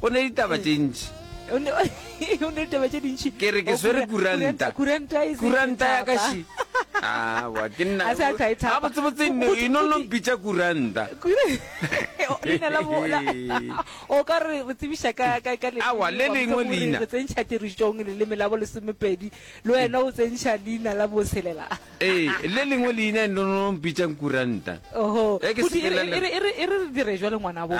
Go ne ditaba tše ntši. Go ne go ne ditaba tše dintši. Ke re ke swere kuranta. Kuranta e se kuranta ya ka shi. Ah, wa ke nna. A sa tsa e tshaba. Ga botse botse no ino no mpitša kuranta. Leina la bola. O ka re re tsebisha ka ka ka le. A wa le lengwe leina. Re tsentšha tirisong le leme la bo lesomepedi. Le wena o tsentšha leina la bo selela. Eh, le lengwe leina no no mpitša kuranta. Oho. E ke se le. E re e re dire jwa le ngwana bo.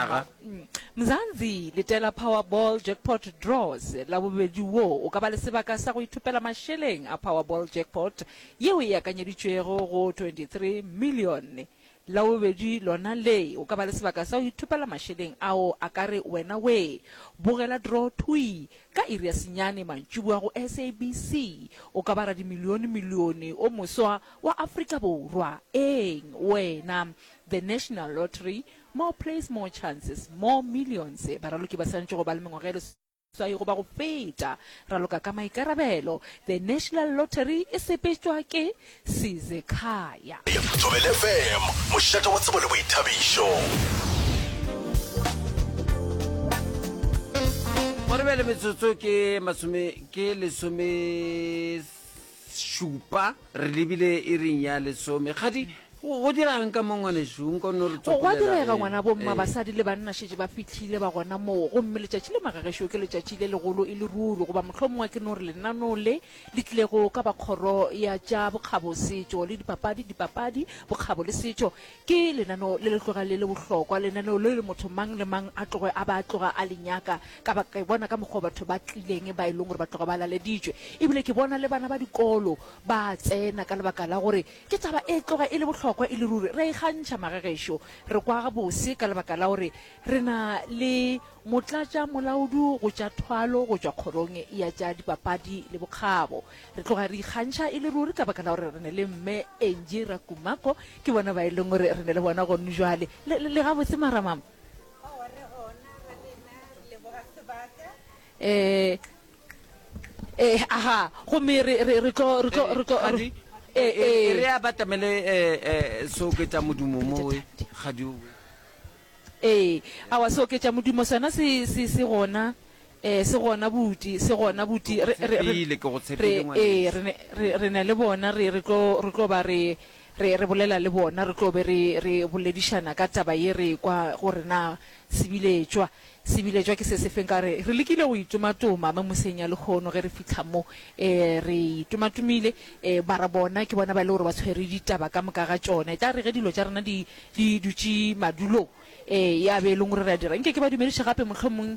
Mzansi, letela Powerball Jackpot Draws Labobedi wo o ka ba le sebaka sa go ithopela mašeleng a Powerball Jackpot yeo e akanyeditšwego go 23 milione. Labobedi lona le, o ka ba le sebaka sa go ithopela mašeleng ao a ka re wena wee. Bogela draw thwi ka iri ya senyane mantšiboa go SABC. O ka ba radimilione milione o moswa wa Afrika Borwa. Eng wena? The National Lottery. More plays, more chances, more millions, baraloki ba swanetše go ba le mengwaga e leswai goba go feta, raloka ka maikarabelo, the National Lottery e sepetšwa ke Sizekhaya. Thobela FM, mošate wa tsebo le boithabišo. Go re bjale metsotso ke masome ke lesome Šupa, re lebile iring ya lesome. Kgadi, go, go dira'ng ka mo, ngwanešu? Nka o nno re tswakolela. Gwa direga, Ee, ngwana, bomma, ee. basadi le banna šetše ba fihlile, ba gona moo. Gomme letšatši le magagešo ke letšatši le legolo e le ruri, goba mohlomongwe a ke no re lenaneo le le tlilego ka ba Kgoro ya tša Bokgabo, Setšo le Dipapadi, Dipapadi, Bokgabo le Setšo, Ke lenaneo le le tloga le le bohlokwa, lenaneo leo le motho mang le mang a tloge a ba a tloga a le nyaka, ka baka ke bona ka mokgwa batho ba tlileng ba e leng gore ba tloga ba laleditšwe, e bile ke bona le bana ba dikolo ba a tsena ka lebaka la gore ke taba e tloga e le bohlokwa e le ruri. Re a ikgantšha mage gešo, re kwa gabose ka lebaka la gore re na le motlatša molaodu go tša thwalo go tšwa kgorong ya tša dipapadi le bokgabo. Re tloga re ikgantšha e le ruri ka baka la gore re ne le Mme Angie Rakumako, ke bona ba e leng gore re ne le bona gonu jwale. Le, le, le gabotse, Maramama? Aowa, re gona ga lena, re leboga sebaka. Eh, eh, aha, gomme re, re, re tlo, re tlo, re tlo, Kgadi, re- eh, e- e- e re eh, abatamele eh, eh, se oketša modumo mowe kgadi owe eh, awa se oketša modumo sona se, se, se gona. Ee, se gona, buti, se gona, buti. Re, re, re, Tshepile, ke go re, tshepile, ee, ngwaneso. re ne, re, re ne le bona, re, re tlo, re tlo ba re, re, re bolela le bona, re tlo be re, re boledišana ka taba ye re ekwa, gore na se bile tšwa, se bile tšwa ke se sefeng. Ka re, re lekile go itomatoma memoseng ya lehono ge re fihla mo, ee, re itomatomile, ee, mara bona ke bona ba e le gore ba tshwere ditaba ka moka ga tšona. E tla re ge dilo tša rena di, di dutše madulong, ee, ya be e leng gore re a dira, nke ke ba dumediše gape, mohlomong.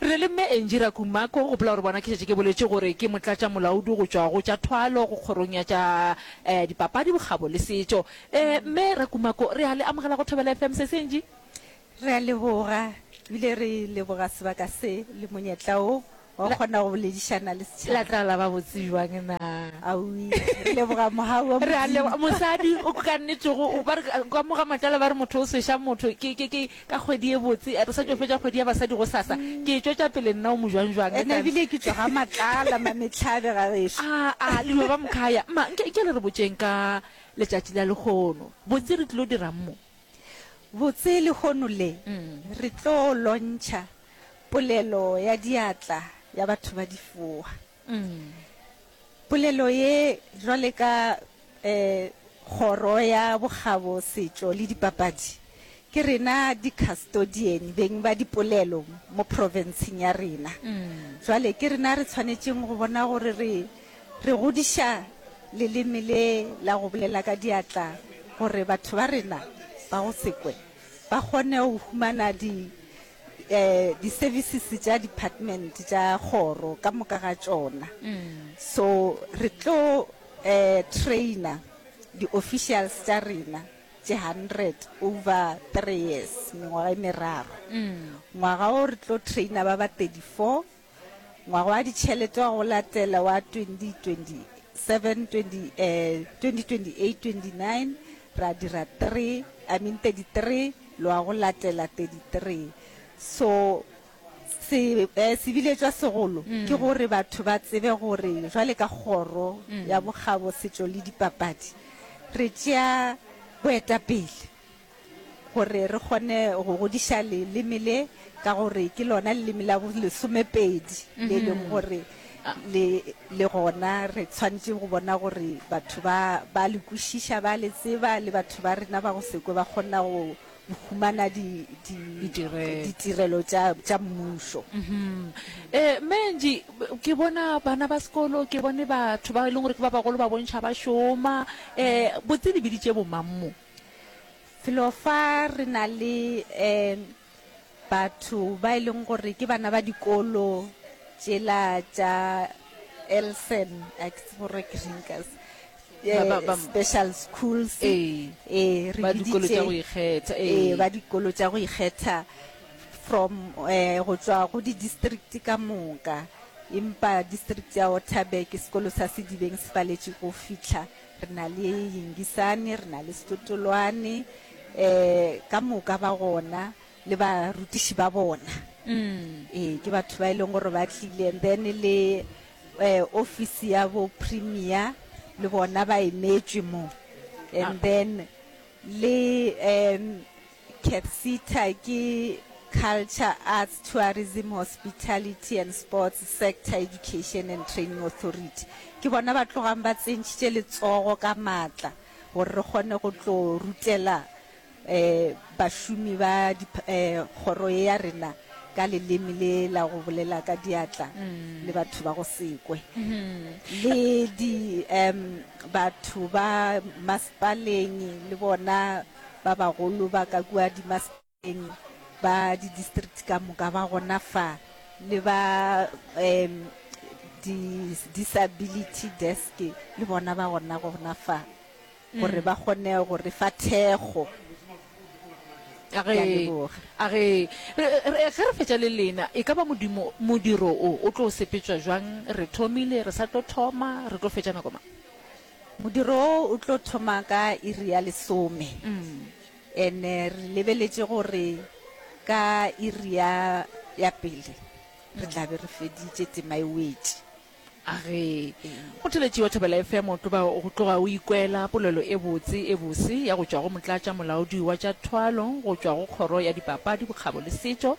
Re le Mme Angie Rakumako, gopola gore bona ke šetše ke boletše gore ke motlatšamolaodi go tšwa go tša thwalo go kgorong ya tša eh dipapadi, bokgabo le setšo. Eh Mme Rakumako, re a le amogela go Thobela FM sesi Angie. Re a leboga, ebile re leboga sebaka se le monyetla wo wa go kgona go boledišana le setšhaba. La tla la ba botse bjang na? Aui, re leboga Mohau wa Re a Modimo. leboga. Mosadi o ka nnetego o ba re ka mo ga matlala ba re motho o sweša motho ke ke ke Ka kgwedi e botse, re sa tšo fetša kgwedi ya basadi gosasa, ke e tšwetša pele nna o mojwanjwang. Ena ebile ke tšwa ga Matlala, Mametlhabe ga gešo. A-a, le dula ba Mkhaya. Mma, nke, nke le re botšeng ka letšatši la lehono. Botse re tlilo dirang mo? Botse lehono le, re tlo lontšha polelo ya diatla ya batho ba difoa. Polelo ye jwale ka Kgoro ya Bokgabo, Setšo le Dipapadi, ke rena dikastodieni beng ba dipolelo mo profenseng ya rena. Jwale ke rena re tshwanetšeng go bona gore re re godiša leleme le la go bolela ka diatla gore batho ba rena ba go sekwe ba kgone go humana di di-services tša department tša kgoro ka moka ga tšona so re tlo um trainer di-officials tša rena tše hundred over three years mengwaga e meraro ngwaga o re tlo trainer ba ba thirty four Ngwaga wa ditšhelete wa go latela wa 2027-2028-29, ra dira 3, I mean 33, le wa go latela 33. So, se, eh, se biletšwa segolo ke gore batho ba tsebe gore jwale ka Kgoro ya Bokgabo, Setšo le Dipapadi re tšea boetapele. gore re kgone go godiša leleme le ka gore ke lona leleme la bolesomepedi le e leng gore le le gona re tshwanetse go bona gore batho ba ba le kwešiša ba le tseba le batho ba rena ba go sekwe ba kgona go humana di- di- Ditirelo. ditirelo tša tša mmušo um menji ke bona bana ba sekolo ke bone batho ba e leng gore ke ba bagolo ba bontšha ba šoma um botse di biditše bomang mo Felo fa re na le um batho ba e leng gore ke bana ba dikolo tšela tša elsen a ke tsebo gore ke reng ka se- Ba- ba- eh, ba- special schools Ee. eh, re ba dikolo biditše- tša go ikgetha ee ee ba dikolo tša go ikgetha from eh go tswa go di-district ka moka empa district ya waterberg sekolo sa sedibeng se paletše go fitlha Re na le Yingisani, re na le Setotolwane, um ka moka ba gona le barutiši ba bona. Ee, ke batho ba e leng gore ba tlile and then le um office ya bo premier le bona ba emetšwe mo and then le um Capsita ke Culture, Arts, Tourism, Hospitality and Sports Sector Education and Training Authority. Ke bona ba tlogang ba tsentšhitše letsogo ka maatla gore re kgone go tlo rutela um bašomi ba um kgoro e ya rena ka leleme le la go bolela ka diatla le batho ba go sekwe le di um batho ba masepaleng le bona Ba bagolo ba ka kua dimasepaleng ba didistrikte ka moka ba gona fa, le ba um di-disability desk le bona ba gona gona fa gore ba kgone go re fa thekgo. a Ke a re leboga. a re re- re- ge re fetša le lena e ka ba modimo modiro o o tlo sepetšwa jwang re thomile re sa tlo thoma re tlo fetša nako mang Modiro wo o tlo thoma ka iri ya lesome, and re lebeletše gore ka iri ya ya pele re tla be re feditše, tema e wetše. A re, Kgothaletši wa Thobela FM o tlo ba go tloga o ikwela polelo e botse e bose ya go tšwa go Motlatša Molaodi wa tša Thwalo go tšwa go Kgoro ya Dipapadi, Bokgabo le Setšo,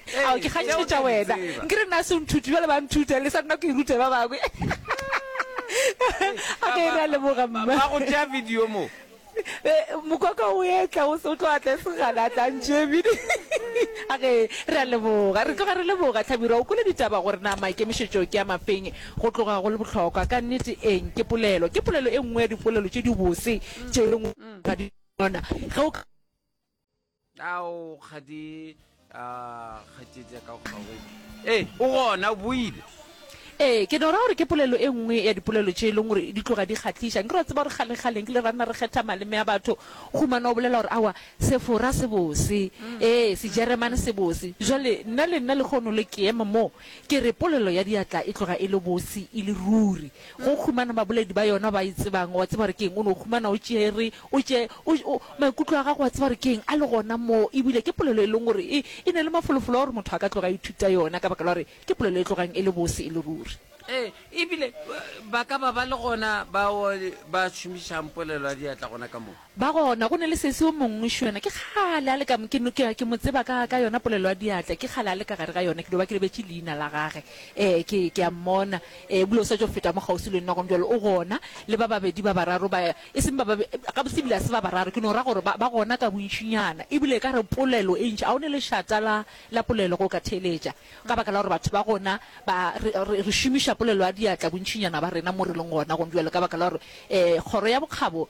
ao ke kgantšhe tša wena nke re na se nthuti bjale ba nthuta le sa nna ke rute ba bangwe a ke ra leboga mma ba go tšea video mo eh, mokwaka o etla o tlo atla se gana tlantše bidi a ke ra leboga re tloga re leboga tlhabirwa o kole ditaba gore na maikemišetšo ke a mafeng go tloga go le bohlokwa ka nnete eng ke polelo ke polelo e nngwe ya dipolelo tše di bose tše re ngwana ge o ao kgadi a kgatšetša ka kgawe ee o gona o boile ee ke no ra gore ke polelo e nngwe ya dipolelo tše e leng gore di tloga di kgatliša nke ra tseba gore kgalekgaleng ke le ranna re kgetha maleme a batho gomana o bolela gore awa sefora se bose mm. ee sejeremane se bose jale nna le nna le kgono le ke ema moo ke re polelo ya diatla e tloga e le bose e le ruri Go o humana baboledi ba yona ba e tsebang, wa tseba gore ke eng, o no o humana o tšere, o tše, o, o, maikutlo a gago wa tseba gore ke eng, a le gona moo. Ebile ke polelo e leng gore e, e na le mafolofolo a gore motho a ka tloga a ithuta yona, ka baka la gore ke polelo e tlogang e le bose e le ruri. Ee, ebile ba ka ba ba le gona bao ba šomišang polelo ya diatla gona ka moo. Ba gona, go ne le sesi yo mongwe šo yena, ke kgale a le ka, ke, ke, ke mo tseba ka, ka yona polelo ya diatla, ke kgale a le ka gare ga yona, ke no ba ke lebetše leina la gage. Ee, ke, ke a mmona. Ee, ebile o sa tšo feta mo kgauswi le nna gona bjalo, o gona, le ba babedi ba bararo ba, e seng ba babe, gabotse ebile ga se ba bararo, ke no ra gore ba, ba gona ka bontšinyana, ebile e ka re polelo e ntši, a o ne lešata la, la polelo ge o ka theeletša, ka baka la gore batho ba gona ba, re, re, re šomiša polelo ya diatla bontšinyana ba rena mo re leng gona gona bjalo, ka baka la gore, ee, kgoro ya bokgabo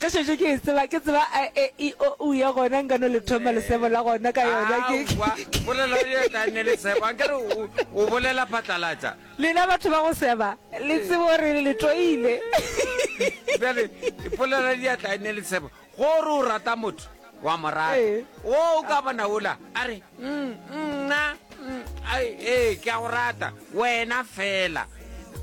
Ge šetše ke e tseba, ke tseba a, e, i, o, u ya gona nka no le thoma lesebo la gona ka yona. Ke, ke. Aowa, polelo ye e ka nne lesebo. A nkere o, o bolela phatlalatša. Lena batho ba go seba, le tsebe gore le toile. Bjale, polelo ya diatla e nne lesebo. Ge o re o rata motho. Wa mo rata? Wo o ka bona wola a re, Nna, ee, ke a go rata, wena fela.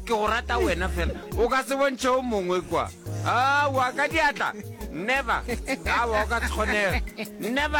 Ke go rata wena fela. O ka se bontšhe o mongwe kwa. Aowa, ka diatla! Never! Aowa, o ka se kgonege. Never!